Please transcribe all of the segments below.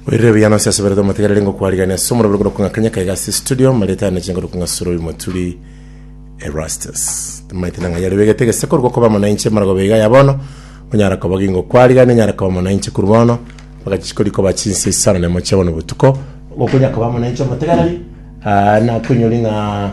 Oirire buya nonsi ase berete omotegereri ngokwarigania ase omorabire korwa kong'a Kenya kaiga ase studio maritane chinguru kong'a sura oyo moturi Erastus tamaite nang'a yari begete gese korwa gokoba amo nainche marago beiga ya bono onyara koba gingo kwarigania nyara koba amo nainche korwa bono mpaka chisiko rikoba chinsa isano na emo chia bono botuko gokonya koba amo nainche omotegereri ah, nakoinyori ng'a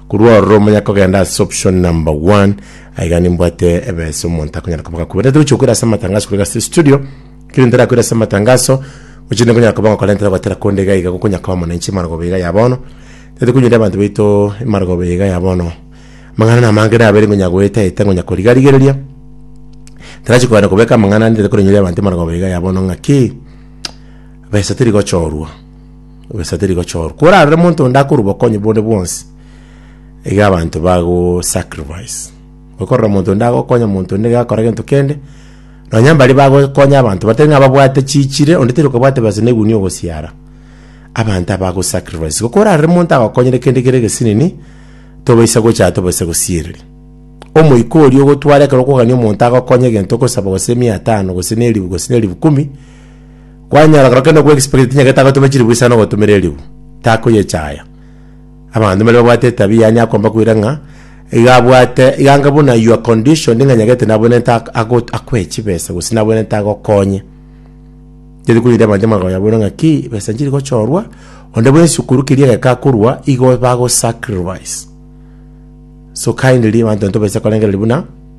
Korwa ororo monyare kogenda ase option number one, aye iga nimbwate ebesa omonto akonyara koba gakwebete. Ntari gochia gokwera ase amatangaso korwa iga ase studio, ekero ntari akwera ase amatangaso, gochia rende nkonyara koba ngokora ntari goetera konde iga iga gokonyara koba mwananchi emargoba iga ya bono, tari konyuria abanto baito emargoba iga ya bono. Amang'ana namange nabere nkonyara goeta eta nkonyara koriga rigereria, ntarachi kogenda kobeka amang'ana ande tari koranyuria abanto emargoba iga ya bono ng'aki, besa teri gochorwa. Ogesate rigochorwa. Korarore monto onde akore obokonyi bonde bwonsi, iga abanto bagosacrifice. Okorora monto onde agokonya monto onde iga akora gento kende, nonya mbaria bagokonya abanto batari ng'a babwate chichire, onde tari kobwate besa na egunia ogosiara, abanto aba agosacrifice. Igo korarore monto agokonyire kende kere egesinini, tobaisa gocha tobaisa gosiereria. Omoika oria ogotware ekero okogania omonto agokonye egento okosaba gose mia tano gose na elifu gose na elifu kumi, Kwanyora korokenda okwe egisibaki tinyagete agotome chilifu gisa nogotumera elifu, takoyechaya. Abanto mbare babwate etabia yaani akomba koira ng'a iga abwate iga anga buna you are conditioned ng'a nyagete nabwenerete ak- agot- akwe chibesa gose nabwenerete agokonye. Teri koira abanto amang'ana ya bono ng'a ki besa nchiri gochorwa, onde bwensi sukuru keria egeka akorwa igo bagosacrifice. So kindly abanto intobase korengereria buna.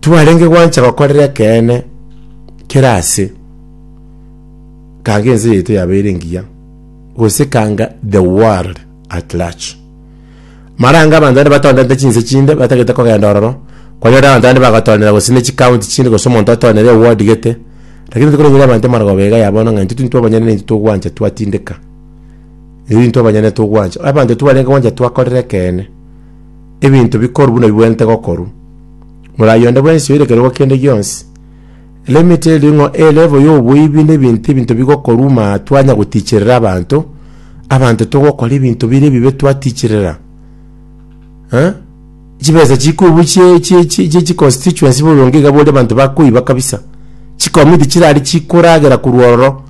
Twarenge gwancha gokorera ekeene kera ase, kanga ense yaito yabeire engiya, gose kanga the world at large. Maranga abanto bande batonderete chinse chinde batagete kogenda ororo, kwanyorire abanto bande bagotoonera gose ne chicounty chinde gose omonto atoonere eward gete, lakini tokoreng'eria abanto amarogoba iga ya bono ng'a intwe tintwe abanyene na intwe togwancha twatindeka. Intwe abanyene togwancha. Abanto twarenge gwancha twakorera ekeene. ebinto bikoru buna bibwenerete gokoru. Morai onde bwensi oirekerigwa kende gionsi, limit erio ng'o e level y'oboibi na ebinto ebinto bigokoru ma twanya goticherera abanto, abanto togokora ebinto bire ebibe twaticherera. Eh? Chibesa chikoibu chie chie chie chie chi constituency boronge iga bori abanto bakoiba kabisa. Chikomiti chirari chikoragera korwa ororo.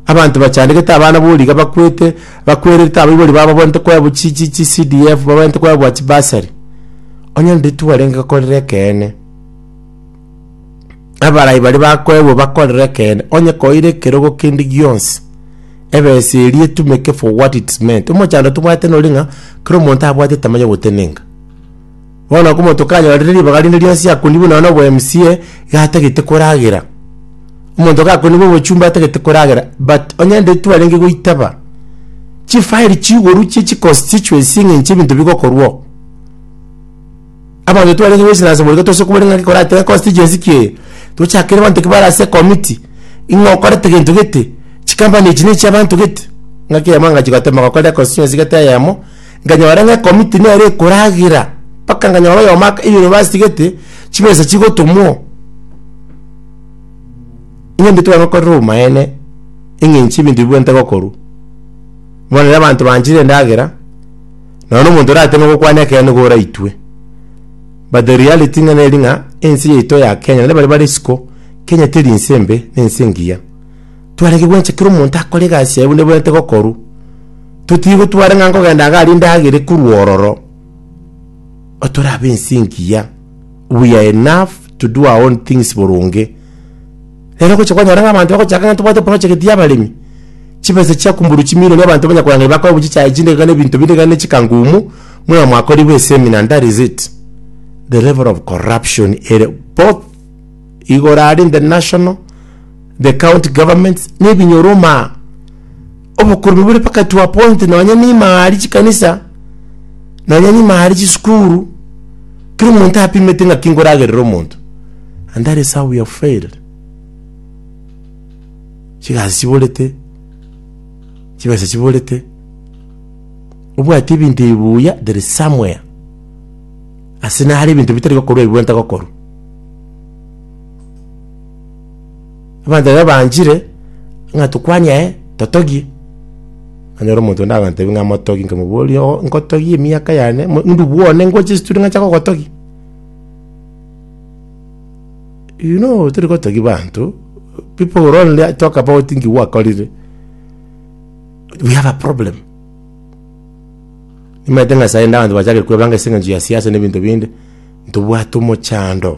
Abanto bachandegete abana boriga bakwete bakwererete abaibori babo babwenerete koebwa chi chi chi CDF babwenerete koebwa chi bursary. Onye onde twarenge akorere ekeene. Abarai baria bakoebwa bakorere ekeene. Onye koire ekerogo kende gionsi ebesa eria etumeke for what it's meant. Omochando tobwate nori ng'a kera omonto abwate tamanya gotenenka. Bono okomo tokanyorire ribaga rinde rionsi akoni buna nonya obo MCA iga atagete koragera. Omonto iga akoni bo obochumba atagete koragera but onye nde twarenge goitaba chi file chi igoro chie chi constituency ng'a inche ebinto bigokorwa oo. Abanto twarenge goisana ase morero tose kobori ng'aki koratebe constituency ki eye. Tochakere abanto ekebare ase committee ing'a okorete gento gete, chi company echi ne chia abanto gete. Ng'aki eyemo angache goteba ng'a okorire constituency gete eyemo. Nkanyora ng'a ekomiti nere ekoragera, mpaka nkanyora oyomo aka eyunivasiti gete, chibesa chigotomwa oo. Eng'encho tibari gokorera obomaene, eng'encho ebinto bibwenerete gokorwa. Bono rero abanto banchire endagera, nonya na omonto orateme gokwana ekeene nigo oraitwe. But the reality ng'a neri ng'a, ense yaito ya Kenya, naende baria bare isiko, Kenya teri nse embe, nense engiya. Twarege gwencha kera omonto akore egasi yaye buna ebwenerete gokorwa. Totiga gotwara ng'a nkogenda iga aria endagera ekorwa ororo. Otorabe ense engiya. We are enough to do our own things boronge. Rero gocha kwanyora ng'a abanto bagochaka ng'a tobwate project y'abaremi. Chibesa chia kumburwa chimilioni abanto banya korang'ana bakore bochia chai chinde iga na ebinto binde iga na chikangumu buna mwakorigwe esemina and that is it. The level of corruption ere both igoro are in the national The county governments nebinyoroma obokurubi bore mpaka to a point nonya nima ari chikanisa nonya nima ari chisukuru kero omonto apimete ng'a kingoragerera omonto and that is how we have failed chigasi chiborete chibesa chiborete obwati ebinto ebi buya there is somewhere ase nare ebinto bitari gokorwa ebi bwenta gokorwa Abanto baria baanchire, ng'a tokwanie aye, totogie. Nanyora omonto onde agantebi ng'a motogi, nkamoboria, oo nkotogie emiaka yane, mo ndubwo one ngoche chitueri ng'ancha gogotogia? You know tori gotogia banto, pipo who are only a- talk about nki gwakorire, we have a problem. Nimaete ng'a sainde abanto bachakire kwebanga ase eng'encho ya siasa na ebinto binde, ntobwate omochando.